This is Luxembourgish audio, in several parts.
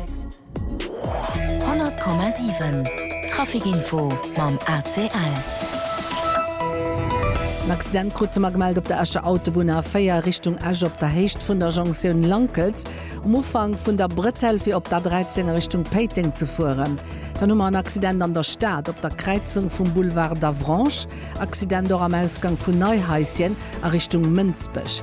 100,7 Trafikinfo mam ACL. En Accident krute mer gemellt op der Escher Autobunn A4 Richtung Esch op der Héicht vun der Jonktioun Lankels um Ufank vun der Brëtell fir op d'A13 a Richtung Péiteng ze fueren. Dann hu mer en Accident an der Stad op der Kräizung vum Boulevard d'Avranches. Accident och am Ausgang vun Neihaischen a Richtung Mënsbech.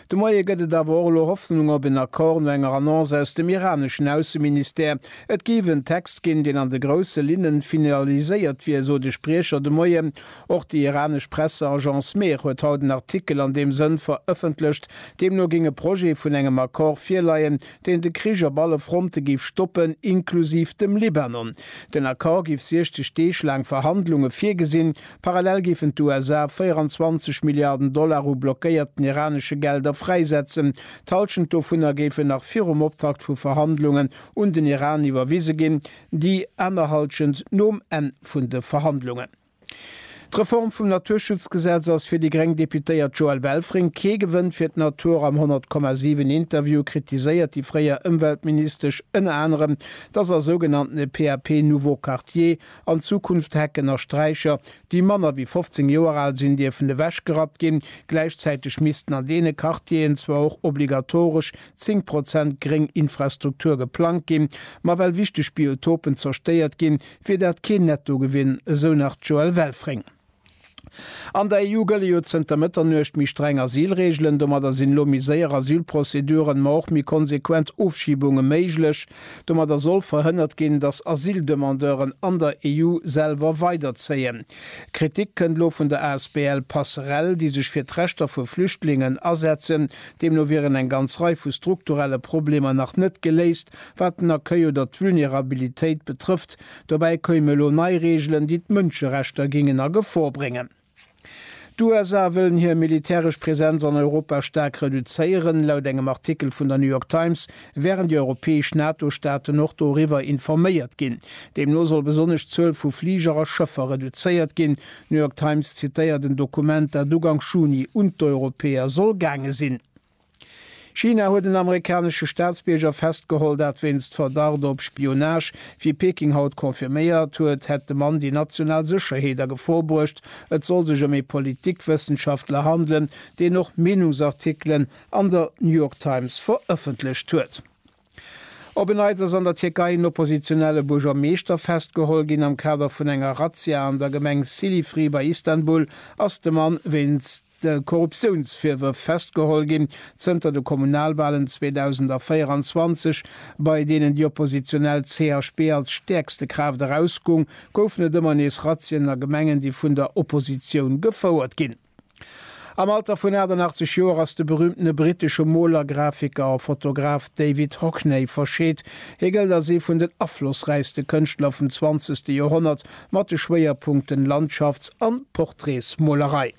De Moie gëtt et awer och elo Hoffnung op en Accord no enger Annonce aus dem iraneschen Ausseministère. Et géif en Text ginn, deen an de grousse Linnen finaliséiert wier, sot e Spriecher de Moien. Och déi iranesch Presseagence Mehr huet haut en Artikel an deem Sënn verëffentlecht. Deemno géing e Projet vun engem Accord virleien, deen de Krich op alle Fronte géif stoppen, inklusiv dem Libanon. Den Accord géif 60 Deeg laang Verhandlunge virgesinn, Parallel géifen d'USA 24 Milliarden Dollar u blockéierten iranesche Gelder fräisetzen. D'Hallschent dovunner géifen nach virum Optakt vu Verhandlungen un den Iran iwwerwise ginn, déi aner Hallschent nom Enn vun de Verhandlungen. D'Reform vum Naturschutzgesetz ass fir déi gréng Deputéiert Joëlle Welfring kee Gewënn fir d'Natur. Am 100,7 Interview kritiséiert déi fréier Ëmweltministesch ënner anerem, datt a sougenannte PAP-Nouveaux Quartiers, An Zukunft Hecken a Straicher, déi manner wéi 15 Joer al sinn, dierfen ewechgerappt ginn. Gläichzäiteg missten an deene Quartieren zwar och obligatoresch 10 Prozent gréng Infrastruktur geplangt ginn, ma well wichteg Biotopen zerstéiert ginn, wier dat keen Nettogewinn, esou nach d'Joëlle Welfring. An der EU gëlle jo zënter Mëtternuecht méi streng Asylreegelen. Domadder sinn elo méi séier Asylprozeduren, ma och méi konsequent Ofschibunge méiglech. Domadder soll verhënnert ginn, datt Asyldemandeuren an der EU selwer weiderzéien. Kritik kënnt elo vun der asbl Passerell, déi sech fir d'Rechter vu Flüchtlingen asetzen. Deemno wieren eng ganz Rei vu strukturelle Problemer nach net geléist, wat den Accueil oder d'Vulnerabilitéit betrëfft, Dobäi keume elo nei Reegelen, déi d'Mënscherechter géingen a Gefor bréngen. D'USA wëllen hir militäresch Präsenz an Europa staark reduzéieren. Laut engem Artikel vun der New York Times wären déi europäesch NATO-Staaten och doriwwer informéiert ginn. Deemno soll besonnesch d'Zuel vu Fliger a Schëffer reduzéiert ginn. D'New York Times zitéiert en Dokument, dat Ugank Juni un d'Europäer soll gaange sinn. China huet en amerikanesche Staatsbierger festgeholl, dat wéinst Verdacht op Spionage. Wéi Peking haut confirméiert huet, hätt de Mann déi national Sécherheet a Gefor bruecht. Et soll sech ëm ee Politikwëssenschaftler handelen, deen och Meenungsartikelen an der New York Times verëffentlecht huet. Op en Neits ass an der Tierkei en oppositionelle Buergermeeschter festgeholl ginn. Am Kader vun enger Razzia an der Gemeng Silifri bei Istanbul ass de Mann wéinst Korruptiounsvirwërf festgeholl ginn. Zënter de Kommunalwalen 2024, bei deenen déi oppositionell CHP als stäerkste Kraaft erausgung, goufen et ëmmer nees Razzien a Gemengen, déi vun der Oppositioun gefouert ginn. Am Alter vun 88 Joer ass de berüümtene brittesche Moler, Grafiker a Fotograf David Hockney verscheet. Hie gëllt als ee vun den aflossräichste Kënschtler vum zwanzegste Joerhonnert, mat de Schwéierpunkten Landschafts a Portraitsmolerei.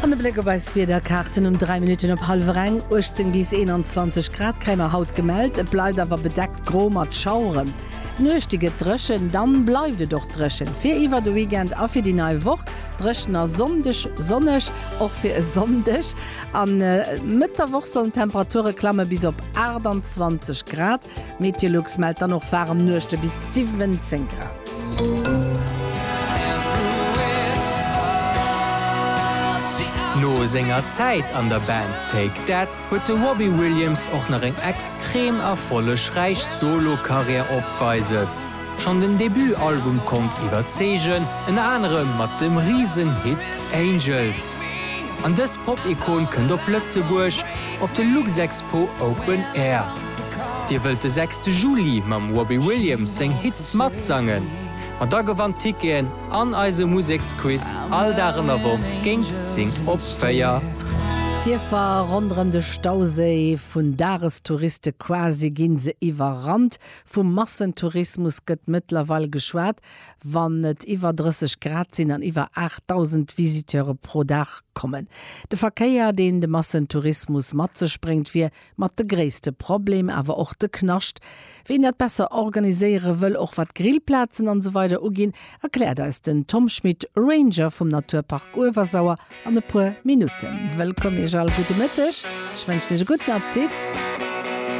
An e Bléck op eis Wiederkaarten, Um 3 Minutten op hallwer eng, 18 bis 21 Grad kréie mer haut gemellt, et bleift awer bedeckt gro mat Schaueren. D'Nuechte gëtt dréchen, dann bleift et och dréchen fir iwwer de Weekend a fir déi nei Woch. Dréchen a Sonndeg sonneg, och fir e Sonndeg. A Mëtt der Woch sollen d'Temperature klamme bis op 28 Grad. Meteolux mellt dann och waarem Nuechte bis 17 Grad. No senger Zäit an der Band Take That huet de Robbie Williams och nach eng extrem erfollegräich Solo-Karriär opweises. Schonn den Debut-Album konnt iwwerzeegen, ënner anerem mat dem Risen-Hit Angels. An dës Pop-Ikon kënnt op Lëtzebuerg op de Luxexpo Open Air. Dir wëllt de sechste Juli mam Robbie Williams seng Hits matsangen? Ma da gewannt Ticketen! An eise Museksquiz all Dag an der Woch géint 10 op 4. D'Dierfer ronderëm de Stauséi, vun Dagestouriste quasi gi se iwwerrannt. Vu Massentourismus gëtt mëttlerweil geschwat, wann et iwwer 30 Grad sinn an iwwer 8.000 Visiteure pro Dag kommen. De Verkéier, deen de Massentourismus mat sech bréngt, wier Mat de gréisste Problem, awer och de Knascht, ween dat besser organiséiere wëll, och wat Grillplazen an esou weider uginn, erkläert eis den Tom Schmit, Ranger vum Naturpark Uewersauer, an e puer Minutten. Wëllkomm Iech all, gudde Mëtteg, ech wënschen Iech e gudden Appetit.